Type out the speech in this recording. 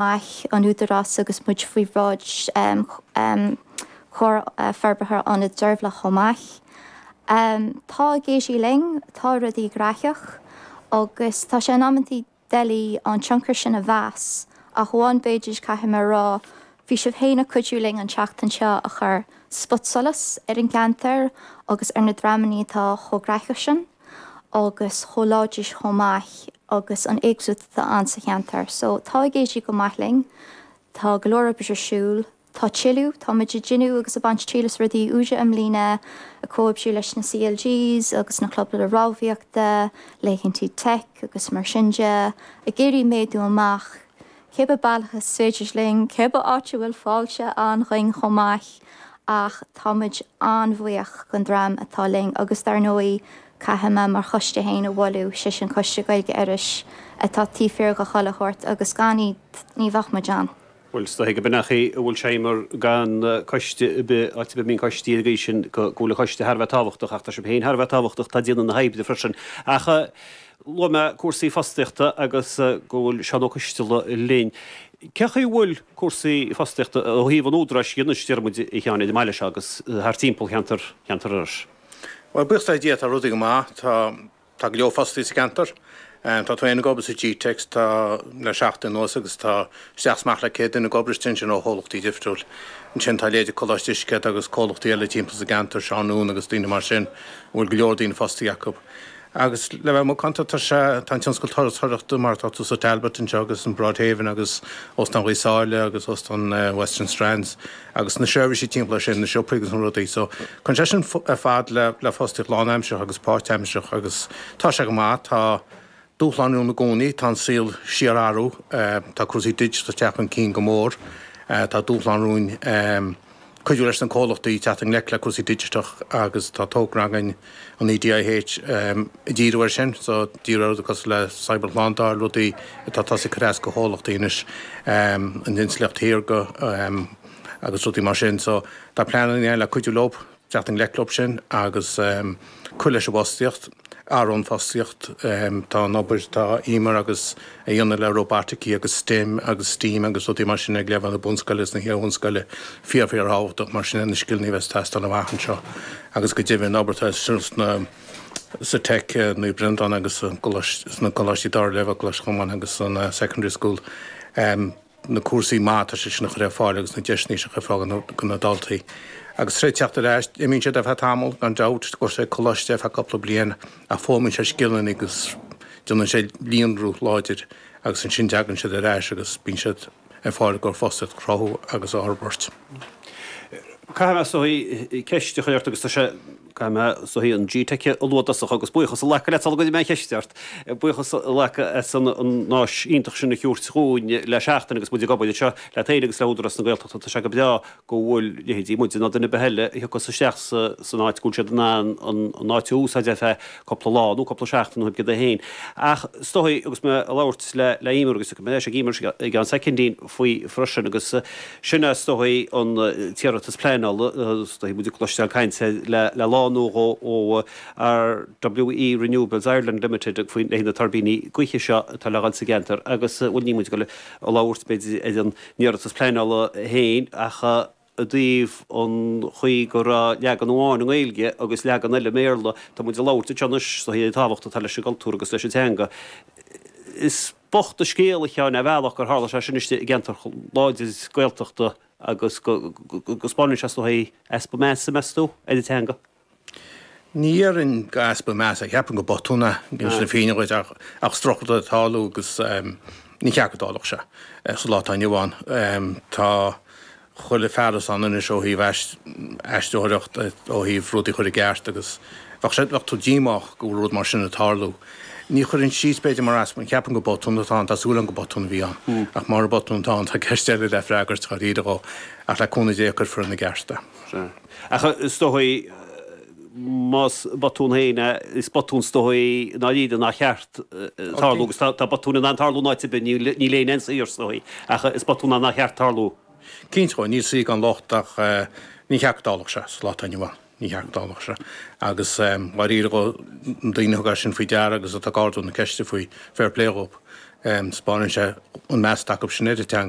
mbeadh an Údarás agus muid faoi bhráid Chomhar Forbartha Ionad Deirbhile chomh maith. Tá ag éirí linn, tá rudaí gnaitheach agus tá sé in amantaí doiligh an tionchar sin a mheas ach amháin, b'fhéidir, caithfidh mé a rá, bhí sibh féin ag cuidiú linn an tseachtain seo a chur spotsolas ar an gceantar agus ar na dreamannaí atá chomh gnaitheach sin. agus chomh láidir chomh maith agus an éagsúlacht atá ann sa cheantar. So tá ag éirí go maith linn, tá go leor oibre ar siúl, tá tuilleadh, tá muid ag déanamh agus ag baint triail as rudaí úra i mbliana, ag comhoibriú leis na CLGs agus na clubanna rámhaíochta, laethantaí teic agus mar sin de, ag iarraidh méadú amach. Cé bith bealach is féidir linn, cé bith áit a bhfuil fáilte ann dhúinn chomh maith, ach tá muid an-bhuíoch den dream atá linn agus dar ndóigh caithfidh mé mo choiste féin a mholadh, sé sin Coiste Gaeilge Iorrais, atá taobh thiar de chuile shórt agus gan iad ní bheadh muid ann. Bhuel, is dóiche gurb in é an chaoi a bhfuil sé, Emer, gan coiste ar bith, áit ar bith a mbíonn coistí ar an gcaoi sin go bhfuil an coiste thar a bheith tábhachtach, ach tá sibh féin thar a bheith tábhachtach, atá ag déanamh na hoibre freisin. Ach. Luaigh mé cúrsaí fostaíochta agus go bhfuil Seán Ó Coisdealbha linn. Cé chaoi a bhfuil cúrsaí fostaíochta ó thaobh an Údaráis dhe anois, déarfaidh muid, a Sheáin, ar an mbaile seo agus thar timpeall cheantar Cheantar Iorrais? Bhuel, buíochas le Dia, tá rudaí go maith. Tá, tá go leor fostaithe sa gceantar. Tá tú fhéin ag obair sa gteic, tá, le seachtain anuas agus tá isteach 's amach le 100 duine ag obair istigh ansin ó chomhlachtaí difriúil. Ansin tá leithéidí Coláiste Uisce agus comhlachtaí eile timpeall sa gceantar, Seán Noone agus daoine mar sin a bhfuil go leor daoine fostaithe acu. Agus le bheith macánta, tá sé, tá an tionscal turasóireachta, mar atá tú sa Talbot anseo agus an Broadhaven agus Óstán Ghaoth Sáile agus Óstán Western Strands agus na seirbhísí timpeall air sin, na siopaí agus na rudaí so, cuireann sé sin ar fad le, le fostaíocht lánaimseartha agus páirtaimseartha agus tá sé go maith, tá. Dúshlán romhainn i gcónaí. Tá an saol ag síorathrú. Tá cúrsaí digiteacha ag teacht chun cinn go mór. Tá dúshlán romhainn cuidiú leis na comhlachtaí teacht i ngleic le cúrsaí digiteacha agus tá togra againn an EDIH ag díriú air sin, díriú ar rudaí cosúil le cyber-shlándáil, rudaí atá tosaithe ag cur as do chomhlachtaí anois, an intleacht shaorga agus rudaí mar sin. Tá pleananna ann le cuidiú leo. teacht i ngleic leo sin agus cur leis an bhfostaíocht, ar an bhfostaíocht. Tá an obair atá Emer agus iad a dhéanamh le róbataicí agus stem agus steam agus rudaí mar sin ag leibhéal na bunscoile agus na hiarbhunscoile fíor, fíorthábhachtach. Mar sin iad na scileanna a bheas ag teastáil amach anseo agus go deimhin an obair atá ar siúl sna, sa Tech i Naomh Breandán agus sna coláistí dara leibhéal, Coláiste Chomáin agus an secondary school. na cúrsaí, mar atá, sé sin a chur ar fáil agus na deiseanna sin a chur ar fáil do na daltaí. Agus tar éis teacht ar ais, imíonn siad ar feadh tamaill, gan dabht, go dtí coláiste ar feadh cúpla bliain ach foghlaimíonn siad scileanna agus déanann siad líonrú láidir agus ansin tagann siad ar ais agus bíonn siad ar fáil chun fostaíocht a chruthú agus a fhorbairt. Caithfidh mé, a Orla, ceist a chur ort agus tá sé. Caithfidh mé sa chaoi an gteic a lua i dtosach agus buíochas a ghlacadh leat, sula gcuirfidh mé an cheist ort. Buíochas a ghlacadh as an áis iontach sin a thabhairt dhúinn le seachtain agus muid ag obair anseo leat féin agus le Údarás na Gaeltachta. Tá sé go breá go bhfuil leithéidí muide ná duine ar bith eile a thiocfas isteach san áit go bhfuil siad in ann an áit a úsáid ar feadh cúpla lá nó cúpla seachtain ó thaobh de féin. Ach is dóigh, agus mé ag labhairt le Eimear, agus beidh mé ag Eimear i gceann soicindín faoi freisin, agus sin é is dóigh an t-iarratas pleanála, is dóigh tá muid ag cloisteáil caint le le lá nó dhó ó RWE Renewables Ireland Limited a bhaineann leis na tuirbíní gaoithe seo atá le dhul sa gceantar agus bhuel níl muid ag dul a labhairt b'fhéidir ar an iarratas pleanála féin ach i dtaobh an chaoi go raibh leagan amháin i nGaeilge agus leagan eile i mBéarla, tá muid ag labhairt anseo anois sa chaoi, an tábhacht atá leis an gcultúr agus leis an teanga. Is bocht an scéal a Sheáin a' Bhealaigh gur tharla sé sin istigh i gceantar láidir Gaeltachta agus go spáineann sé sa chaoi, easpa measa, meas tú? ar an teanga. Ní déarfainn easpa measa, ceapaim go botún atá i gceist sin féin ach is trua é a bheith ag tarlú agus ní ceart go dtarlódh sé sa lá atá inniu ann. Tá chuile fearas ann anois ó thaobh aistriúcháin, ó thaobh rudaí a chur i gceart agus bheadh tú díomách go bhfuil rud mar sin ag tarlú. Ní chuirfinn síos b'fhéidir mar easpa, ceapaim go botún atá ann, tá súil agam go botún a bhí ann ach mura botún atá ann tá ceist eile le freagairt dháiríre dhó ach le cúnamh Dé cuirfear ina gceart é. Sea. Ach is dóigh, más botún féin é, is botún is dóigh i ndáiríre nár cheart tarlú, agus tá botúin in ann tarlú in áit ar bith, níl éinne aon saor, is dóigh, ach is botún é nár cheart tarlú. Cinnte, ó níl saoi gan locht ach ní cheart go dtarlódh sé sa lá atá inniu ann, ní cheart go dtarlódh sé. Agus dháiríre dhó na daoine a thug é sin faoi deara agus atá ag ardú na ceiste faoi, fair play dhóibh. 'Spáineann sé an meas atá acu sin ar an teanga.